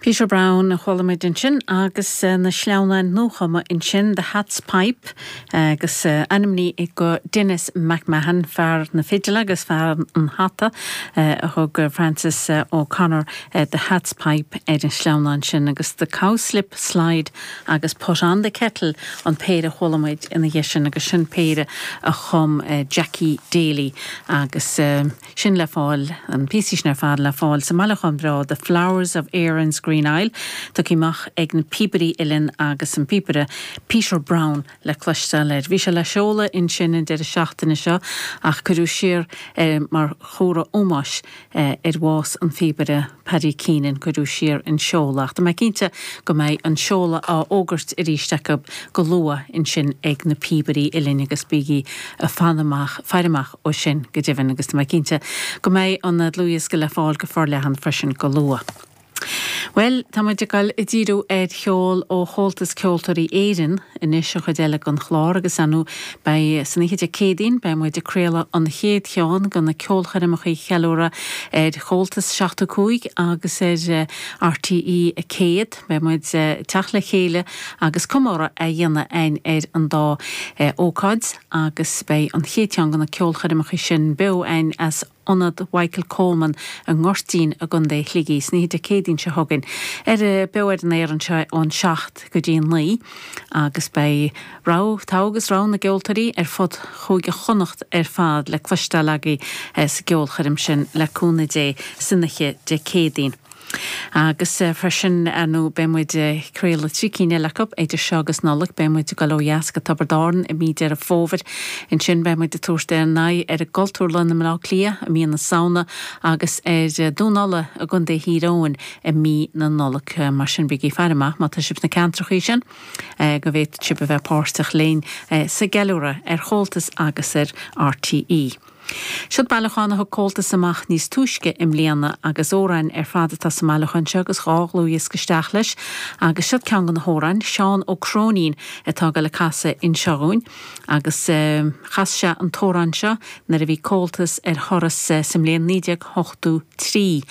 Peter Browne a chuala muid ansin agus na sleamhnáin nuachumtha ansin, The Hat's Pipe, agus ainmnithe do Denis McMahon, fear na fidle agus fear an hata, a thug Francis O'Connor The Hat's Pipe ar an sleamhnán sin, agus The Cowslip Slide agus Put on the Kettle an péire a chuala muid ina dhiaidh sin, agus sin péire a chum Jackie Daly agus. sin le fáil, na píosaí sin ar fad le fáil sa mbailiúchán breá The Flowers of Erin's Green Isle, tugtha amach ag Na Píobairí Uilleann agus an píobaire Peter Browne le cloisteáil air. Bhí sé le seoladh ansin an deireadh seachtaine seo ach cuireadh siar é mar chomhartha ómóis ar bhás an phíobaire. Paddy Keenan cuireadh siar an seoladh, ach tá mé cinnte go mbeidh an seoladh á fhógairt arís acu go luath ansin ag Na Píobairí Uilleann agus bígí ag faire amach, faire amach dó sin go deimhin agus tá mé cinnte go mbeidh an dlúthdhiosca le fáil go forleathan freisin go luath. Bhuel, tá muid ag dul ag díriú ar cheol ó Chomhaltas Ceoltóirí Éireann anois, an chuid eile den chlár agus ar ndóigh Beidh san oíche Dé Céadaoin, beidh muid ag craoladh an chéad cheann de na ceolchoirmeacha cheiliúradh ar Chomhaltas 75 agus ar RTÉ 100. Beidh muid ag teacht le chéile agus comóradh á dhéanamh againn ar an dá ócáid agus beidh an chéad cheann de na ceolchoirmeacha sin beo againn as ionad Mhichael Coleman i nGoirtín i gContae Shligigh. san oíche Dé Céadaoin seo chugainn ar Beo ar an Aer anseo ón seacht go dtí a naoi agus beidh rogha, togha agus rogha na gceoltóirí ar fud Chúige Chonnacht ar fad le cloisteáil agaibh sa gceolchoirm sin, le cúnamh Dé, san oíche Dé Céadaoin. Agus freisin, ar ndóigh, beidh muid ag craoladh trí cinn eile acu idir seo agus Nollaig. Beidh muid ag dul ó dheas go Tiobraid Árann i mí Deireadh Fómhair. Ansin beidh muid ag tabhairt ár n-aghaidh ar an gCultúrlann i mBleá Cliath i mí na Samhna agus ar Dún Uladh i gContae Thír Eoghain i mí na Nollag. Mar sin, bígí ag faire amach má tá sibh sna ceantracha sin go bhféadfaidh sibh a bheith páirteach linn sa gceiliúradh ar Chomhaltas agus ar RTÉ. Siod bailiúchán a thug Comhaltas amach níos túisce i mbliana agus amhráin ar fad atá sa mbailiúchán seo agus dhá dhlúthdhiosca isteach leis agus siod ceann de na hamhráin, Seán Ó Cróinín atá ag dul ag casadh anseo dhúinn agus chas sé an t-amhrán seo nuair a bhí Comhaltas ar thuras sa mbliain naoi déag ochtó trí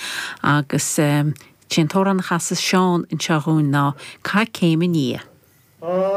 agus sé an t-amhrán a chasas Seán anseo dhúinn ná Cath Chéim an Fhia